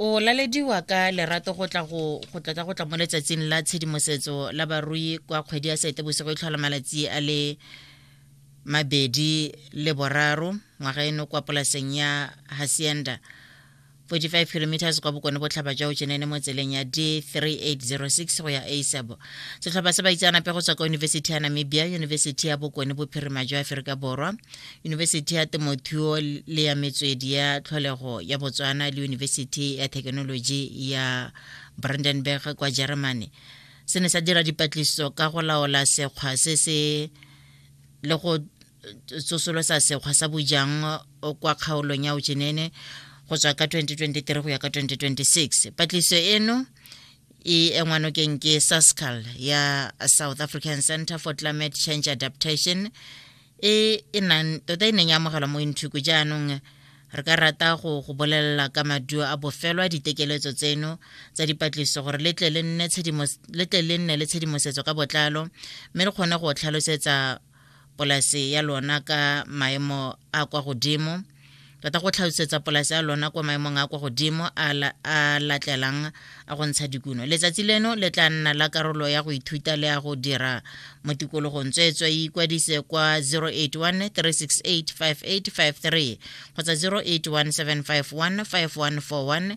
o lalediwa ka lerato go tla go go tla ka go tla mo letsatsing la tshedimosetso la barui kwa kgwedi ya seetebosigo e tlhola malatsi a le mabedi le boraro ngwaga eno kwa polaseng ya hacienda 45 kilometers kwa bokone botlhaba jwa ojenene mo tseleng ya d3806 go ya asabo setlhopha sa baitseanape go tswa kwa yunibesithi ya namibia yunibesithi ya bokone bophirima jwa aforika borwa yunibesithi ya temothuo le ya metswedi ya tlholego ya botswana le yunibesithi ya thekenoloji ya brandenburg kwa germany se ne sa dira dipatlisiso ka go laola sekgwa se se le go tsosolo sa sekgwa sa bojang kwa kgaolong ya ojenene go tswa ka 2023 go ya ka 2026 patlisiso eno e engwa nokeng ke sascal ya south african center for climate change adaptation e e nang tota e neng ya amogelwa mo inthuku jaanong re ka rata go go bolelela ka maduo a bofelo a ditekeletso tseno tsa dipatlisiso gore le tle le nne le tshedimosetso ka botlalo mme re kgone go tlhalosetsa polase ya lona ka maemo a kwa godimo tota go tlhalosetsa polase ya lona kwa maemong a kwa godimo a latlelang a go ntsha dikuno letsatsi leno le tla nna la karolo ya go ithuta le ya go dira mo tikologong tsweetswe e ikwadise kwa 081 368 5853 kgotsa 081 751 5141